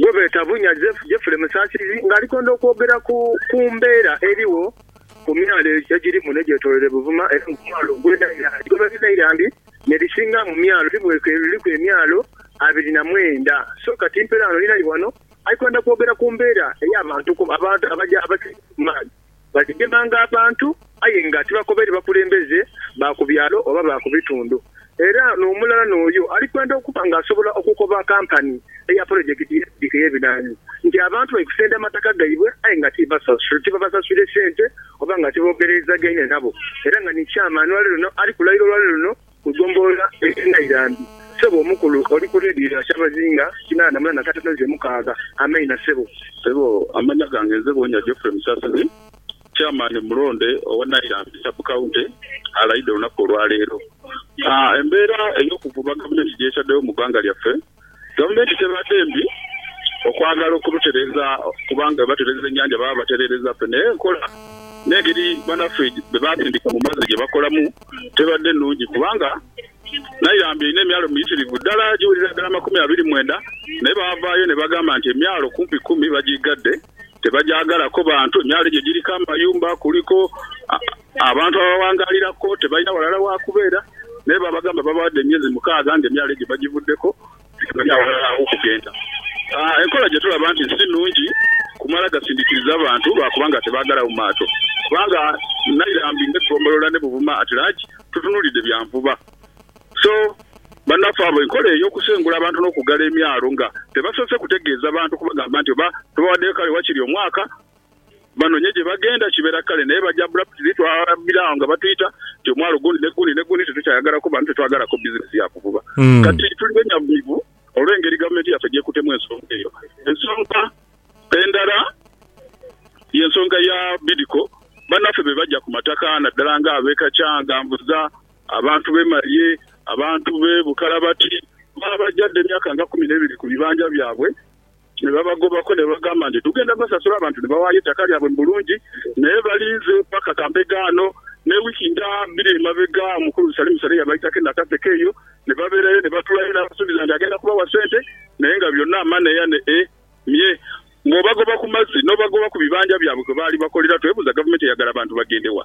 gwebeeta Bunya Jeffrey Musasizi nga alikwenda okwogera ku ku mbeera erigho ku myalo egiri muno egyetoloire Buvuma era nga omwalo ogwe Nairambi gwebeeta Nairambi nerisinga mu myalo libweka eririku emyalo abiri na mwenda so kati mperaano ninali wano alikwenda kwogera ku mbeera eyabantu abaja abaja abaja kumaadhi Baligemanga abantu, aye nga tibakobaire bakulembeze ba ku byalo oba ba ku bitundu. Era n'omulala n'oyo alikwenda okuba ng'asobola okukoba kampani eya polojekiti y'ebidduka ey'ebinhaanhi nti abantu bali kusenda mataka gaibwe aye nga tibabasaswire sente oba nga tiboogereizagaine nabo. Era nga ni chairman wa leero luno ali kulaira olwa leero luno Kugombolola eye Nairambi sebo omukulu oli ku leediyo ya kyabazinga kinaana mu nana katono ze mukaaga. Ameina sebo. Sebo amanya gange nze Bwonya Geoffrey Musasizi, Chairman omulonde owa Nairambi Sub County alayidde olunaku olwaleero. Embeera eyokuvuba gavumenti gyetaddewo mu ggwanga lyaffe Gavumenti tebadde mbi okwagala okurutereeza kubanga bwe batereeza ennyanja baba batereereza ffe naye enkola n'engeri banaffe be baasindika mu mazzi gye bakolamu tebadde nnungi kubanga Nairambi erina emyalo miyitirivu ddala egiwerera ddala amakumi abiri mwenda naye baavaayo ne bagamba nti emyalo kumpi kkumi bagiggadde tebagyagalako bantu, emyalo egyo giriko amayumba kuliko Abantu abawangaalira ko tebalina ghalala wa kubeera, naye baabagamba babawadde emyezi mukaaga ng'emyalo egyo bagivuddeku, tibalina aghalala aw'okugenda. Enkola gye tulaba nti si nnungi kumala gasindikiriza bantu lwa kubanga tebaagala mu maato, kubanga Nairambi n'eggombolola ne Buvuma at large tutunuulidde bya nvuba. So, bannaffe abo enkola ey'okusengula abantu n'okuggala emyalo nga tebasoose kutegeeza bantu kubagamba nti oba tubawaddeyo kale wakiri omwaka Banonye gye bagenda kibeera kale naye baja abruptly twabira agho nga batwita nti omwalo gundi ne gundi ne gundi tetukyayagala kuba nti tetwagala ko business ya kuvuba. Kati tuli benyavumivu olw'engeri gavumenti yaffe gy'ekutemu ensonga eyo. Ensonga endala ye nsonga ya Bidco banaffe be baja ku mataka naddala nga ab'e Kakyangambuza, abantu b'e Malye, abantu b'e Bukalabati babaja dha emyaka nga kumi n'ebiri ku bibanja byabwe. Ne babagobaku ne bagamba nti, Tugenda basasula abantu ni bawaayo eitaka lyabwe mu bulungi, naye balinze paka kambega ghano. Ne wiiki nga biri emabega omukulu Salimu Sale yabaitako e Nakaseke eyo, ni babeerayo ni batuulayo. Naabasuubiza nti agenda kubawa sente, naye nga byonna amaneya ne e mye. Bw'obagoba ku mazzi n'obagoba ku bibanja byabwe kwe baali bakolera, twebuuza gavumenti eyagala bantu bagende wa?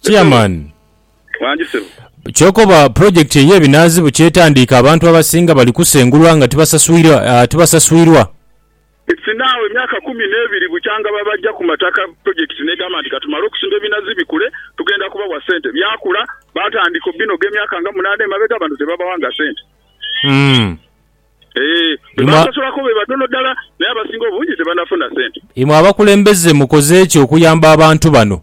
Chairman. Wangi ssebo. Kyokoba project eye binaazi bukyetandiika abantu abasinga bali kusengulwa nga tibasaswirwa. It's now emyaka kumi nebiri bukyanga babajja ku mataka project negamba nti katumale okusimba ebinazi bikule tugenda kubawa sente. Byakula batandika obinoga emyaka nga munaana emabega abantu tebabawanga sente. Eeh bebasasulako bebatono dala naye abasinga obungi tebanafuna sente. Imwe abakulembeze mukoze ki okuyamba abantu bano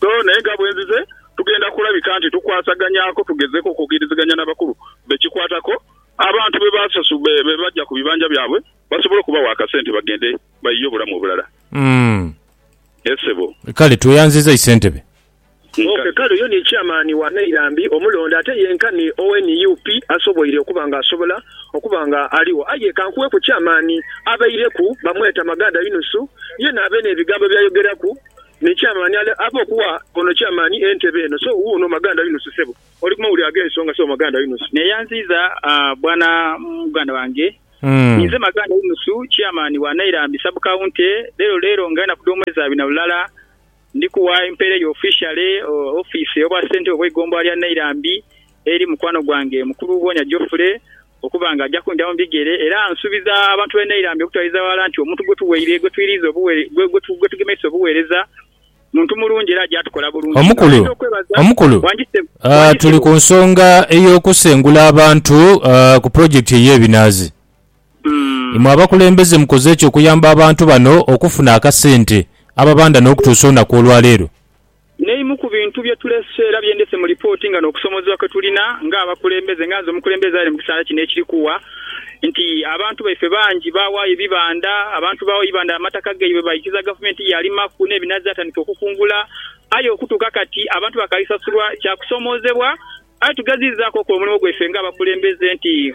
So naye nga bwenzize, tugenda kulabika nti tukwasaganyaaku, tugezeku okukiriziganya n'abakulu bekikwataku, abantu bebaja ku bibanja byabwe basobole okubawa akasente bagende bayiye obulamu obulala. Yes ssebo. Kale tweyanziza Isentebe. Ok kale oyo ni Chairman wa Nairambi omulonde ate yenkani owa nup asoboile okuba nga asobola okuba nga aligho. Aye ka nkuweku eky'amaani, abaireku bamweta Maganda Yunusu, yena abe n'ebigambo by'ayogeraku ni ky'amaani, ale abe okuwa ono ky'amaani entebe eno. So, wuuno Maganda Yunusu, ssebo. Oli ku mawulire ag'ensonga, Ssebo Maganda Yunusu. Neeyanziiza bwana muganda wange. Ninze Maganda Yunusu, ky'amaani wa Nairambi Sub-County. Leero leero nga enaku dh'omwezi abiri na lulala, Ndi kuwa empeera eyo ofiishale ofiisi ey'obwa ssentebe obw'eigombolola lya Nairambi eri mukwano gwange mukulu Bwonya Geoffrey okuba nga aja kundhira mu bigere era nsuubiza abantu b'e Nairambi okutwaliza ghalala nti omuntu gwe tuweire gwe twiriiza obuweereza gwe tugemeisa obuweereza muntu mulungi era aja tukola bulungi nga Omukulu, ntera okwebaza Omukulu, Wangi Ssebo, ah, wangi tuli Ssebo. ku nsonga ey'okusengula abantu ah, ku pulojekiti ey'ebinaazi. Imwe abakulembeze mukoze ki okuyamba abantu bano okufuna akasente ababanda n'okutuusa olunaku olwaleero? N'eimu ku bintu bye tulese era bye ndhise mu lipooti nga n'okusoomoozebwa kwe tulina ng'abakulembeze, nga nze omukulembeze aire mu kiseera kino ekiri kugha, nti abantu baife bangi baawaayo ebibanda, abantu baagho ebibanda amataka gaibwe baikiza gavumenti yaalimaku n'ebinazi yatandika okukungula aye okutuuka kati abantu bakaali sasulwa kya kusoomoozebwa aye tugeziizaaku okola omulimu gwaife ng'abakulembeze nti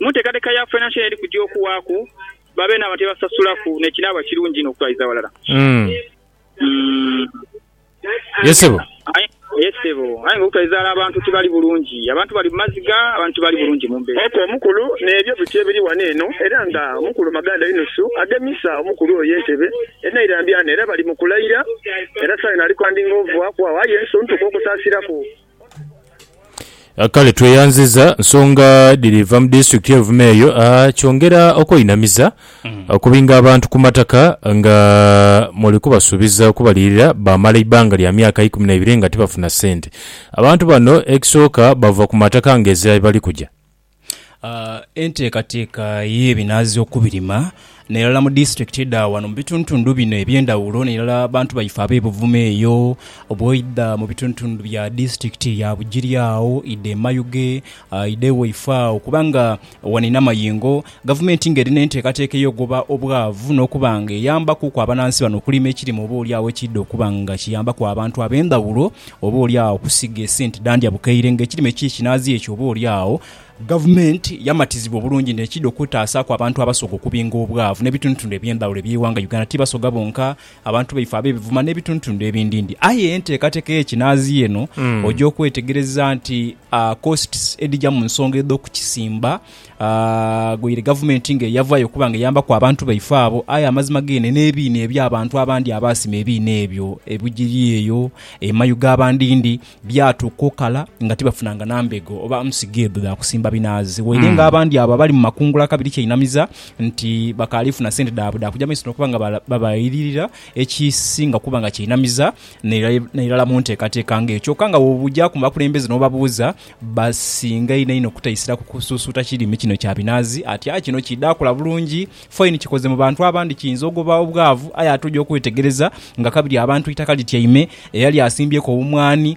Mu nteekateeka ya Financial Aid kujja okuwaaku babe n'abantu be basasulaku n'ekinaaba kirungi inho okutwaliza aghalala. Ye ssebo. Ye ssebo. Aye nga okutwaliza aghalala abantu tibali bulungi. Abantu bali mu maziga, abantu tibali bulungi mu mbeera. Oka omukulu n'ebyo biti ebiri ghano eno era nga Mukulu Maganda Yunusu agemisa omukulu oyo entebe enairambya ghano era bali mu kulaira era saayona ali kwandinga ovaaku agho aye nsuntuka okusaasiraku Kale tweyanziza nsonga dhiri va mu disitulikiti ye Buvuma eyo kyongera okweinamiza okubinga abantu ku mataka nga muli kubasuubiza okubalirira baamala eibbanga lya myaka ikumi naibiri nga tibafuna sente. Abantu bano ekisooka bava ku mataka nga ezira yebali kuja. Enteekateeka y'ebinaazi okubirima nairala mu disitulikiti dha wano mu bitundhutundu bino eby'endhaghulo nairala abantu baife ab'e Buvuma eyo, bw'oidha mu bitundhutundu bya disitulikiti ya Bugiri agho, oidha e Mayuge, oidha e Waifo agho kubanga wano inh'amayengo. Gavumenti ng'eri n'enteekateeka ey'okugoba obwavu n'okuba ng'eyambaku ku abanansi bano okulima ekirime oba oli agho ekiidha okuba nga kiyambaku abantu ab'endhawulo oba oli agho okusiga esente dha ndya bukaire ng'ekirime ki kinaazi ekyo oba oli agho Gavumenti yamatizibwa obulungi nti ekiidha okwetaasaaku abantu abasoga okubinga obwavu n'ebitundutundu eby'endhawulo eby'eighanga Uganda. Ti basoga bonka, abantu baife ab'ebivuma n'ebitundutundu ebindindi. Aye enteekateeka ey'ekinaazi eno oja okwetegereza nti costs edhija mu nsonga edh'okukisimba Aghoire gavumenti nga eyavaayo okuba nga eyambaku abantu baife abo, aye amazima geene n'ebiina eby'abantu abandi abaasima ebiina ebyo ebigiri eyo emayu ga bandindi, byatuuka okala nga tibafunanga na mbego oba nsigo edho dha kusimba binaazi. Waire nga abandi abo abali mu makungula kabiri kyainamiza nti bakaali funa sente dhaabwe dha kuja mu maiso n'okuba nga babayiririra, ekisinga okuba nga kyainamiza n'irala mu nteekateeka ng'eyo. Kyoka nga bw'oja ku bakulembeze n'obabuuza, Basinga inho inho okutaisira ku kusuusuuta kirime kino kya binaazi. Atya kino kiidha kula bulungi faini kikoze mu bantu abandi kiinza ogoba obwavu aye ate oja okwetegereza nga kabiri abantu eitaka lityaime. Era lyasimbyeku obumwani,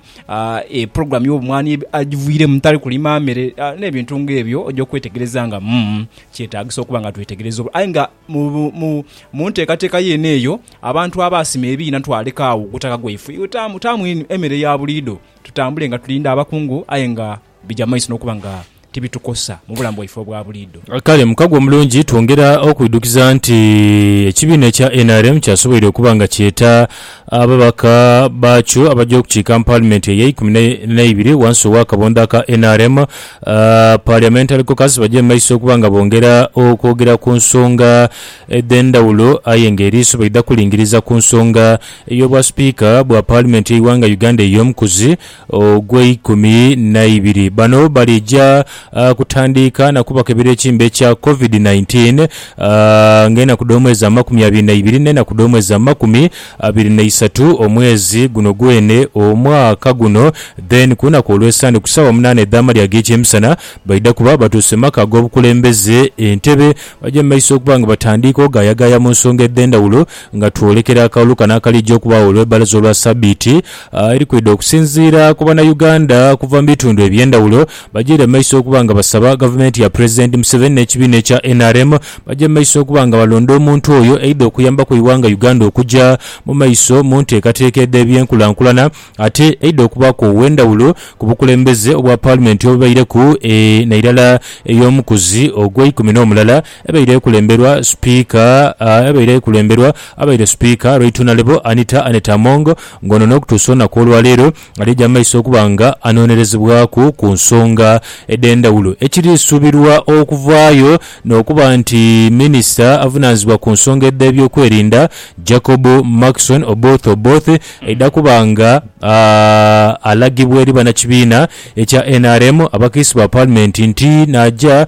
pulogulaamu y'obumwani agiviiremu tali kulima mere n'ebintu ng'ebyo oja okwetegereza nga umm kyetaagisa okuba nga twetegereza. Aye nga mu nteekateeka yeene eyo abantu abaasima ebiina twaleka agho ogutaka gwaife taamu taamu emere ya buliidho. Tutambule nga tulinda abakungu aye nga bigya mu maiso n'okuba nga tibitukosa mu bulamu bwaife obwa buliidho. Kale mukago omulungi twongera okwidhukiza nti ekibiina ekya nrm kyasoboire okuba nga kyeta ababaka baakyo abaja okukiika mu Palimenti eyeikumi neibiri wansi ow'akabonda aka nrm Parliamentary Caucus baje mu maiso okuba nga bongera okwogera ku nsonga edh'endhawulo aye nga eriiso baidha kulingiriza ku nsonga Ey'obwa Sipiika bwa Paalimenti y'eighanga Uganda ey'omukuzi ogw'eikumi naibiri. Bano baliija kutandiika na kubakebera ekimbe ekya Covid nineteen nga enaku dh'omwezi amakumi abiri naibiri n'enaku dh'omwezi amakumi abiri naisatu omwezi guno gwene omwaka guno then kulunaku olw'esande ku saawa munaana edh'amalya ag'ekyemisana baidha kuba batuuse mu maka ag'obukulembeze Entebbe baja mu maiso okuba nga batandiika ogayagaaya mu nsonga edhendhawulo Nga twolekera akalulu kano akalija okubaagho olw'ebbalaza olwa sabiiti eri kwidha okusinziira ku Bannayuganda okuva mu bitundu eby'endhawulo bagyeire mu maiso okuba nga basaba Gavumenti ya Pulezidenti Museveni n'ekibiina ekya nrm bagye mu maiso okuba nga balonda omuntu oyo eidha okuyambaku eighanga Uganda okugya mu maiso mu nteekateeka edh'ebyenkulankulana ate eidha okubaaku ow'endhawulo ku bukulembeze obwa Paalimenti obubaireku e nairala ey'omukuzi ogw'eikumi n'omulala ebaire ekulemberwa Sipiika ebaire ekulemberwa abaire Sipiika Rweitunalebo Anita Annet Among nga ono n'okutuusa olunaku olwaleero alija mu maiso okuba nga anoonerezebwaku ku nsonga edhendhawulo ekiri suubirwa okuvaayo n'okuba nti Minisita avunaanizibwa ku nsonga edh'ebyokwerinda Jacob Markson Oboth Oboth aidha kuba nga alagibwa eri banakibiina ekya nrm abakiise ba Palimenti nti naaja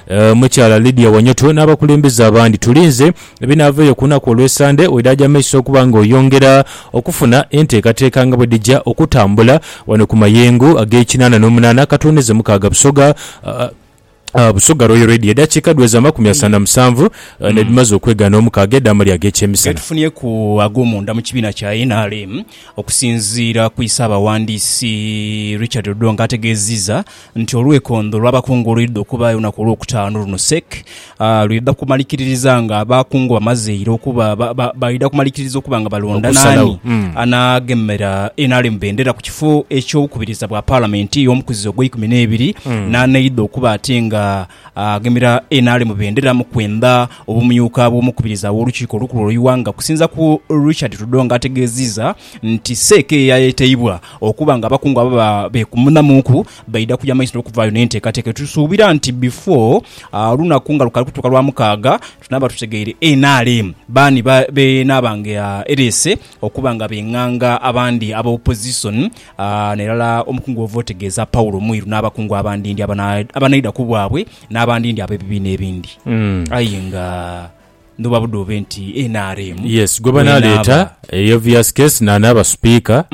Omukyala Lydia Wanyoto n'abakulembeze abandi. Tulinze ebinaavaayo ku lunaku olw'esande wedaagya mu maiso okuba nga oyongera okufuna enteekateeka nga bwedhija okutambula wano ku mayengo ag'ekinaana n'omunaana akatondeze mukaaga Busoga Busoga Royal Radio. Edakiika dhiweze amakumi asanu na musanvu nedhimaze okwegaana omukaaga edh'amalya ag'ekyemisana. Getufunyeku ag'omunda mu kibiina kya nrm okusinziira ku isaabaghandiisi Richard Odongo ategeziza. nti olwekondho lw'abakungu olwidha okuba aye olunaku olwokutaanu luno sek. Lwidha kumalikiririza nga abakungu bamazeire okuba baidha kumalikiriza okuba nga balonda naani anaagemera nrm bendera ku kifo eky'obukubiriza bwa palamenti y'omukuzizo ogweikumi n'ebiri n'aneidha okuba ate nga Agemera NRM bendera mu kwendha obumyuka bw'omukubiriza w'olukiiko olukulu olw'eighanga okusinza ku Richard Tudor nga ategeziiza nti seeka eyayeteibwa okuba nga abakungu ababa beekumunamuuku baidha kuja maiso n'okuvaayo n'enteekateeka etusuubira nti bifo olunaku nga lukali kutuuka Lwamukaaga tunaaba tutegeire nrm baani beenaaba nga ereese okuba nga benganga abandi aba opozisoni A N'irala omukungu ova otegeeza Paulo mwiru n'abakungu abandindi abanaidha ku bwabwe, n'abandindi ab'ebibiina ebindi. Aye nga ndhuba budhobe nti nrm Yes, gwebanaleeta eri obvious case n'anaaba Sipiika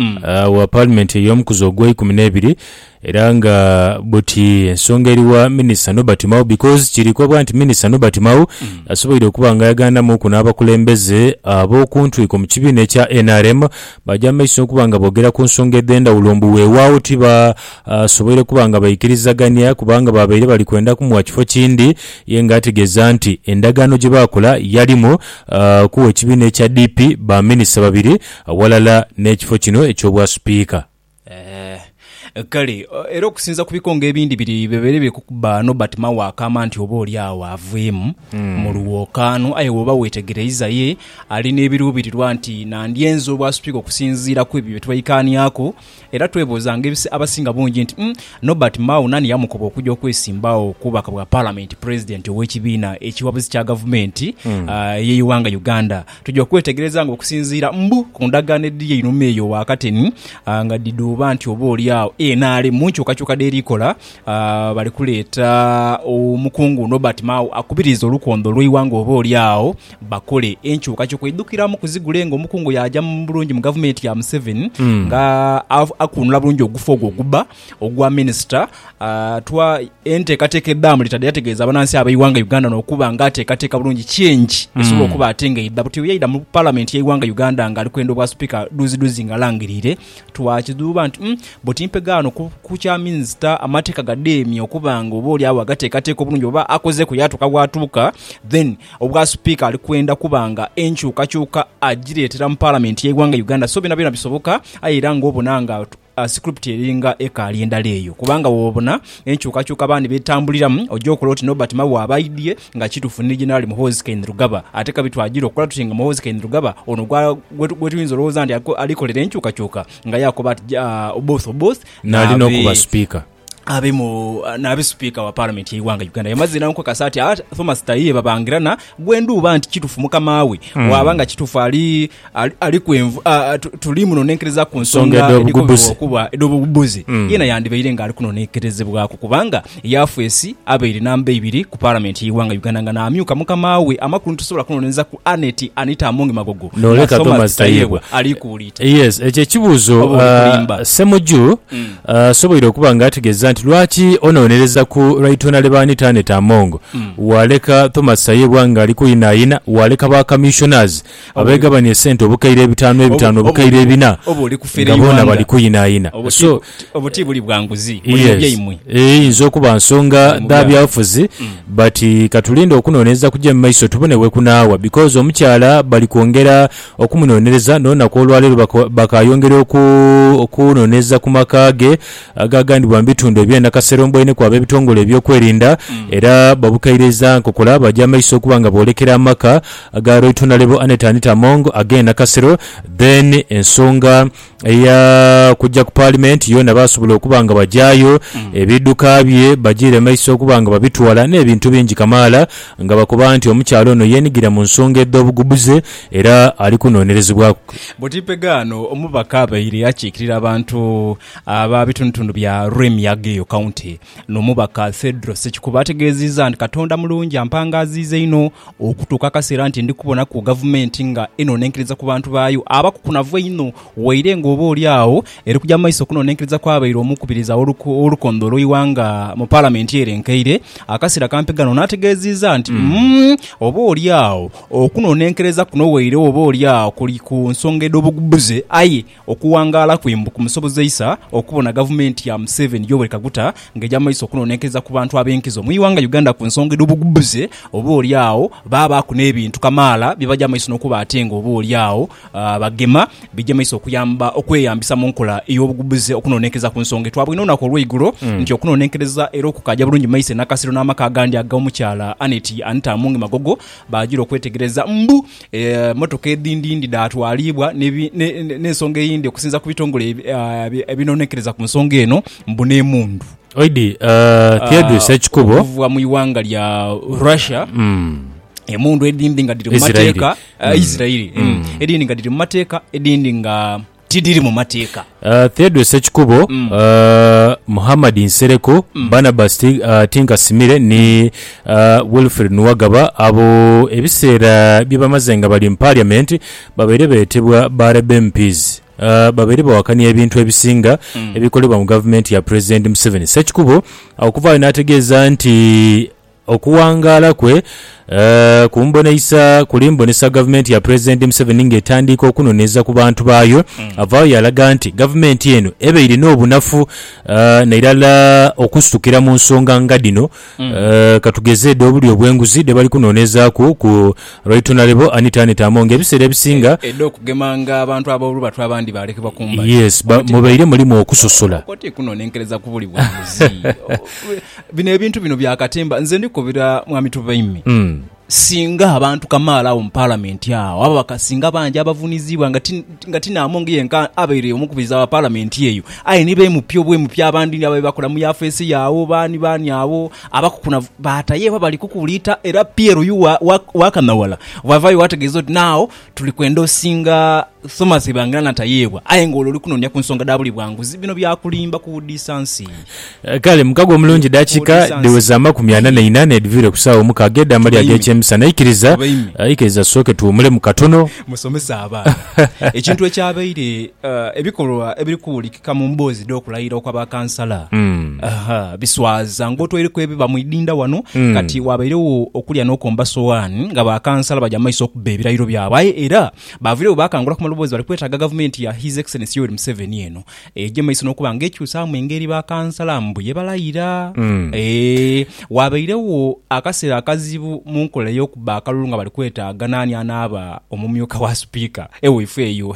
wa Palimenti ey'omukuzi ogweikumi n'ebiri era nga buti ensonga eri wa Minisita Norbert Mao because kirikobwa nti Minisita Norbert Mao asoboire okuba nga yagandamuuku n'abakulembeze ab'okuntwiko mu kibiina ekya nrm Baja mu maiso n'okuba nga boogera ku nsonga edh'endhawulo mbu weewaawo tibasoboire kuba nga baikirizagania kubanga baabaire bali kwenda kumuwa kifo kindi ye ng'ategeeza nti endagaano gye baakola yalimu kuwa ekibiina ekya DP baminisita babiri aghalala n'ekifo kino eky'Obwasipiika. Ee. Kale, era okusinza ku bikonge ebindi biri bibeere biri kukuba ghano, but Mao akaama nti oba oli agho aviimu mu lwokaano. Aye bw'oba weetegereiza, ye ali n'ebiruubirirwa nti nandyenze obwasupika okusinziira ku ebyo bye twaikaaniaku. Era twebuuzanga abasinga bungi nti, Umm, Norbert Mao naani yamukoba okuja okwesimba agho ku bubaka bwa Palamenti, Pulezidenti ow'ekibiina ekiwabuzi kya Gavumenti ey'eighanga Uganda? Tuja okwetegereza nga okusinziira mbu ku ndagaano edhiri einhuma eyo wakati ni nga dhidhuuba nti oba oli agho nrm mu nkyukakyuka dh'eri kola bali kuleeta omukungu Nobert Mao akubirize olukondo lw'eighanga oba oli agho bakole enkyukakyuka eidhukiramu ku zigule nga omukungu yaaja bulungi mu gavumenti ya Museveni nga akunula bulungi ogufu ogwo ogubba ogwa Minisita atwa enteekateeka edhaamu litadha yategeeza abanansi ab'eighanga Uganda n'okuba nga ateekateeka bulungi change esobola okuba ate nga eidha buti yaidha mu Palamenti y'eighanga Uganda ng'ali kwenda Obwasipiika dhuuzidhuuzi ng'alangiriire twakidhuuba nti umm buti mpegaano ku kya Minisita amateeka gadeemye okuba nga oba olyagho agateekateeka obulungi oba akozeeku yaatuuka waatuuka then Obwasipiika ali kwenda kuba nga enkyukakyuka agireetera mu Palamenti y'eighanga Uganda so byonabyona bisoboka aye era ng'obona nga Script eringa ekaali endala eyo kubanga bwobona enkyukakyuka abaana byetambuliramu oja okola oti Nobert Mao aba aidhie nga kitufu ni Generali Muhoozi Kainerugaba ate kabi twajira okola tuti nga Muhoozi Kainerugaba ono gwetuyinza olowoza nti alikolera enkyukakyuka nga yakoba ati Oboth Oboth nali nokuba Speaker. abe mu nabe sipiika wa palamenti y'eighanga Uganda yamaze nankukasa ati aba Thomas Tayiye babangira na gwendhuuba nti kitufu mukama we mm. waba nga kitufu ali ali, ali kwenvu uh, tuli muno nenkereza ku nsonga okuba edhobubuzi mm. yena yandibaire nga ali kuno nenkerezebwaku kubanga yafwesi abaire namba ibiri ku palamenti y'eighanga Uganda nga namyuka mukama we amakulu nitusobola kunoneza ku Aneti Anita Amongi Magogo noleka Thomas Tayiye alikuulita yes ekyo ekibuuzo uh, Semuju mm. Asoboire okuba nga ategeeza nti lwaki onoonereza ku Right Honourable Annet Among waaleka Thomas Tayebwa ng'ali kuyinayina, waaleka ba Commissioners abeegabania esente obukaire ebitaanu ebitaanu obukaire ebina nga boona bali kuyinayina. So yes eyinza okuba nsonga dha byabufuzi but katulinde okunonereza kuje mu maiso tubone wekunaawa because omukyala bali kwongera okumunonereza n'olunaku olwaleero bakaayongera okunonereza ku maka ge agagandibwa mu bitundu ebye Nakasero mboineku ab'ebitongole eby'okwerinda era babukairiza nkokola bagya maiso okuba nga boolekera amaka ga Loitonalebo Annet Anita Among ag'e Nakasero then ensonga Eya kujja ku Paalimenti yoona baasobola okuba nga bagyayo, ebidduka bye bajiire mu maiso okuba nga babitwala n'ebintu bingi kamaala nga bakoba nti omukyala ono yeenigira mu nsonga edh'obugubuze era ali kunoonerezebwaku. Butipegano omubaka abaire akiikirira abantu aba bitundutundu bya Rwemiyaga eyo County N'omubaka Fedro Ssekikubo ategeezizza nti Katonda mulungi ampangaaziiza inho okutuuka akaseera nti ndi kubonaku Gavumenti nga enoonenkeriza ku bantu baayo abakukunavu einho waire nga oba oli agho eri kugya mu maiso okunoonenkeriza kw'abaire omukubiriza w'olukonde olw'eighanga mu Palamenti erenkeire akaseera kampi gano n'ategeezizza nti oba oli agho okunoonenkereza kuno waire oba oli agho kuli ku nsonga edh'obugubuze aye Okuwangaala kwe mbu kumusobozeisa okubona gavumenti ya Museveni, Yoweri Kaguta nga eja mu maiso okunonenkereza ku bantu ab'enkizo mu ighanga Uganda ku nsonga edh'obugbuze oba oli agho baabaaku n'ebintu kamaala bye baja mu maiso n'okuba ate nga oba oli agho bagema bije mu maiso okuyamba okweyambisa mu nkola ey'obugbuze okunonenkereza ku nsonga. Twabwine olunaku olw'eigulo nti okunonenkereza era okukaaja bulungi mu maiso e Nakasero n'amaka agandi ag'omukyala Annet Anita Amongi Magogo Baajira okwetegereza mbu emmotoka edhindhindhi dhaatwaliibwa n'ensonga eyindi okusinza ku bitongole ebinoonekereza ku nsonga eno mbu n'emundu Oidi Theodore Ssekikubo okuva mu ighanga lya Russia. Emundu edhindhi nga dhiri mu mateeka, Isirairi, edhindhi nga dhiri mu mateeka edhindhi nga. tidhiri mu mateeka. Theodore Ssekikubo, Muhammad Nsereko, Barnabas Tinkasimire ni Wilfred Nuwagaba abo ebiseera bye bamaze nga bali mu Paaliamenti babaire beetebwa ba Labour MPs babaire bawakania ebintu ebisinga ebikolebwa mu Gavumenti ya Pulezidenti Museveni. Ssekikubo okuvaayo n'ategeeza nti, Okuwangaala kwe ku mboneisa kuli mbonesa gavumenti ya Pulezidenti Museveni ng'etandiika okunoneeza ku bantu baayo. Avaayo yalaga nti gavumenti eno ebaire n'obunafu nairala okusitukira mu nsonga nga dhino katugeze edh'obulyo obw'enguzi dhebali kunoneezaaku ku Right Honourable Anita Annet Among ebiseera ebisinga. Edh'okugemanga abantu ab'olubatu abandi baalekebwa ku mbali. Yes, mubaire mulimu okusosola. Kkooti ekunonenkereza ku buli bwanguzi. Bino ebintu bino bya katemba. Nze ndi kukobera Mwami Tubaime, singa abantu kamaala agho mu Palamenti agho, ababaka singa bangi abavuniziibwa nga ti nga ti Namongi yenka abaire omukubiriza wa Palamenti eyo, aye ni bemupi obwemupi abandi ni ababe bakola mu yafeesi ye agho, baani baani agho abakukunavu baata ye baba bali kukuuliita era Pierre oyu wa, wa, wa Kanhawala bwavaayo bwategeeza oti naagho. Tuli kwenda osinga Thomas Ebangira na Tayeebwa aye nga olwo oli kunoonia ku nsonga dha buli bwanguzi. Bino bya kulimba kuwudiisa nsi. Kale mukago omulungi dakiika dhiweza amakumi ana na ina n'edhivire ku saawa omukaaga edh'amalya ag'ekyemisana. Ikiriza, ikiriza tusooke tuwumulemu katono. Musomese abaana ekintu ekyabaire ebikolwa ebiri Ka mu mboozi dh'okulayira okwa ba kansala, biswaza ng'otwaireku ebiba mu idinda wano. Kati waabairegho okulya n'okomba sowaani nga ba kansala baja mu maiso okubba ebirayiro byabwe. Aye era baaviiregho baakangula ku maloboozi bali kwetaaga Gavumenti ya His Excellency Yoweri Museveni eno eije mu maiso n'okuba ng'ekyusaamu engeri ba kansala mbu ye balayira. Eeh, waabairegho akaseera akazibu mu nkola ey'okubba akalulu nga bali kwetaaga naani anaaba omumyuka wa Sipiika ewaifeeyo.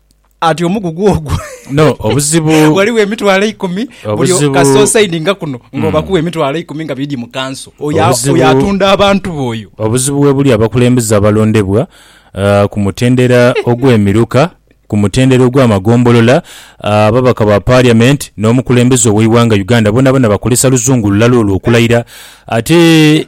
Ati omugugu ogwo No, obuzibu ghaligho emitwalo eikumi buli Obuzibu- kasosaidinga kuno nga obakuwa emitwalo eikumi nga bidhi mu kanso oyo a- Obuzibu- oyo atunda abantu be oyo obuzibu webuli abakulembeze abalondebwa ah, ku mutendera ogw'emiruka, ku mutendera ogw'amagombolola, ah, ababaka ba parliament n'omukulembeze ow'eighanga Uganda bonaboona bakozesa luzungu lulala olwo okulayira ate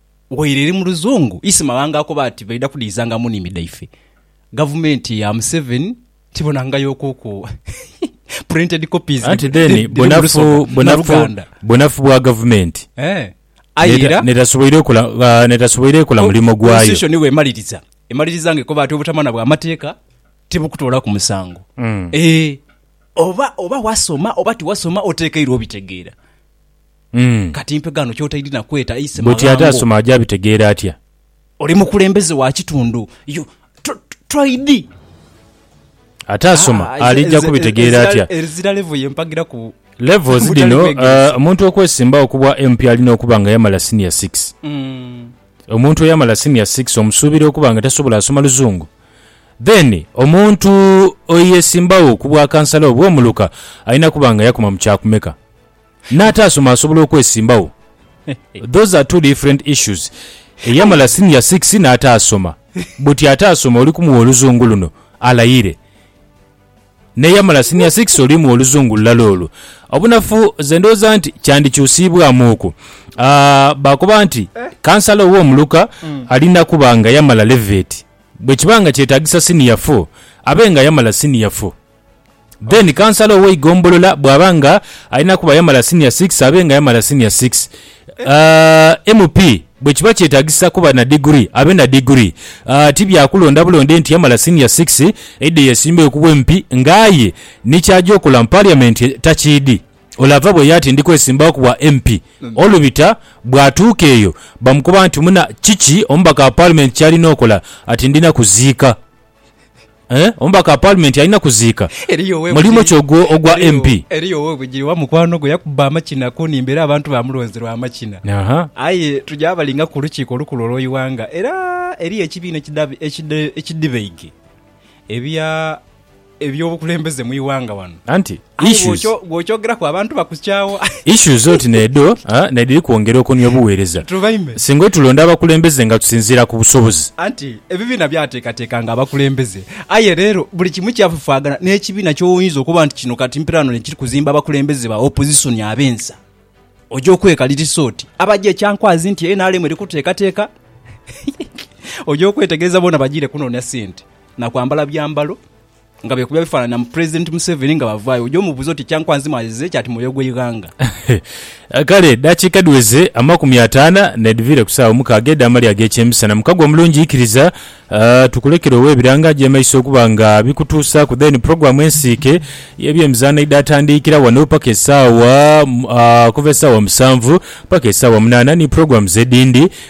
Waire eri mu luzungu, isi mawanga akoba ati baidha kudhiizanga mu niimi dhaife. Gavumenti ya Museveni tibonangayokuku printed copies Anti then dhiri mu bunafu Lusoga na bunafu Luganda. bunafu bwa gavumenti Eh, aye n'eta- era n'etasoboire kola ah, n'etasoboire kola mulimo gwayo. Constitution bw'emaliriza, emaliriza nga ekoba ati obutamana bwa mateeka tibukutoolaku musango. Eh, oba oba wasoma oba tiwasoma oteekeirwa obitegeera. Kati mpe ghano kyotaidhi na kweta Ise maghango. Buti ate asoma aja bitegeera atya? Oli mukulembeze wa kitundu yo toidhi. Ate asoma alija kubitegeera atya? Ezira level ye mpagira ku. Levels dhino omuntu okwesimbawo ku bwa MP alina okuba nga yamala senior six. Omuntu eyamala senior six omusuubira okuba nga tasobola asoma luzungu? Then omuntu eyesimbawo ku bwa kansala obwo muluka alina kuba nga yakoma mu kyakumeka? N'ataasoma asobola okwesimbawo? Those are two different issues. Eyamala senior six n'ataasoma, buti ataasoma oli kumuwa oluzungu luno alayire. N'eyamala senior six oli muwa oluzungu lulala olwo. Obunafu nze ndowooza nti kyandikyusiibwamu okwo. Baakoba nti kansala ow'omuluka alina kuba nga yamala leveti. Bwe kiba nga kyetaagisa senior four, abe nga yamala senior four. Then kansala ow'eigombolola bw'aba nga alina kuba yamala Senior Six abe nga yamala Senior Six. Aah, MP bwe kiba kyetagisa kuba na diguli abe na diguli. Aah, ti bya kulonda bulonde nti yamala Senior Six aidhe yeesimbewo ku bw'MP nga aye ni ky'aja okola mu Parliament takiidhi. Ole ava bweyo ati ndi kwesimbawo ku bwa MP. Olubita bw'atuuka eyo bamukoba nti muna kiki omubaka wa Parliament ky'alina okola ati ndina kuziika. Omubaka wa Paalimenti alina kuziika. Mulimu ki ogwo ogwa MP? Eriyo ow'obugiri wa mukwano gwe yakubba amakina ku nhimba era abantu baamulonze lwa makina. Aye tugya abalinga ku Lukiiko Olukulu olw'eighanga era eriyo ekibiina ekidhibaidhi eby'obukulembeze mu ighanga ghano. Aye Issues. bwokyo- bwokyogeraku abantu bakukyawa Issues oti n'edho ah, n'edhiri kwongera okunhia obuweereza. tubaime Singa otulonda abakulembeze nga tusinziira ku busobozi. anti ebibiina byateekateekanga abakulembeze aye leero buli kimu kyafafaagana n'ekibiina ky'oyinza okuba nti kino kati mperaano n'ekiri kuzimba abakulembeze ba opozisoni ab'ensa oja okwekalirisa oti abagya ekyankwazi nti nrm eri kuteekateeka oja okwetegereza boona bagiire kunoonia sente na kwambala byambalo nga bekubya bifanhanhi na Pulezidenti Museveni nga bavaayo, oja omubuuza oti Kyankwanzi mwazizire ki ati mwoyo gw'eighanga. Kale edaakiika dhiweze amakumi ataana n'edhiviire ku saawa omukaaga edh'amalya ag'ekyemisana. Mukago omulungi ikiriza tukulekere owe ebiranga agy'emaiso okuba nga bikutuusaaku then pulogulaamu ensiike y'ebyemizaano eidhatandiikira wano paka esaawa okuva esaawa musanvu paka esaawa munaana ni pulogulaamu z'edhindi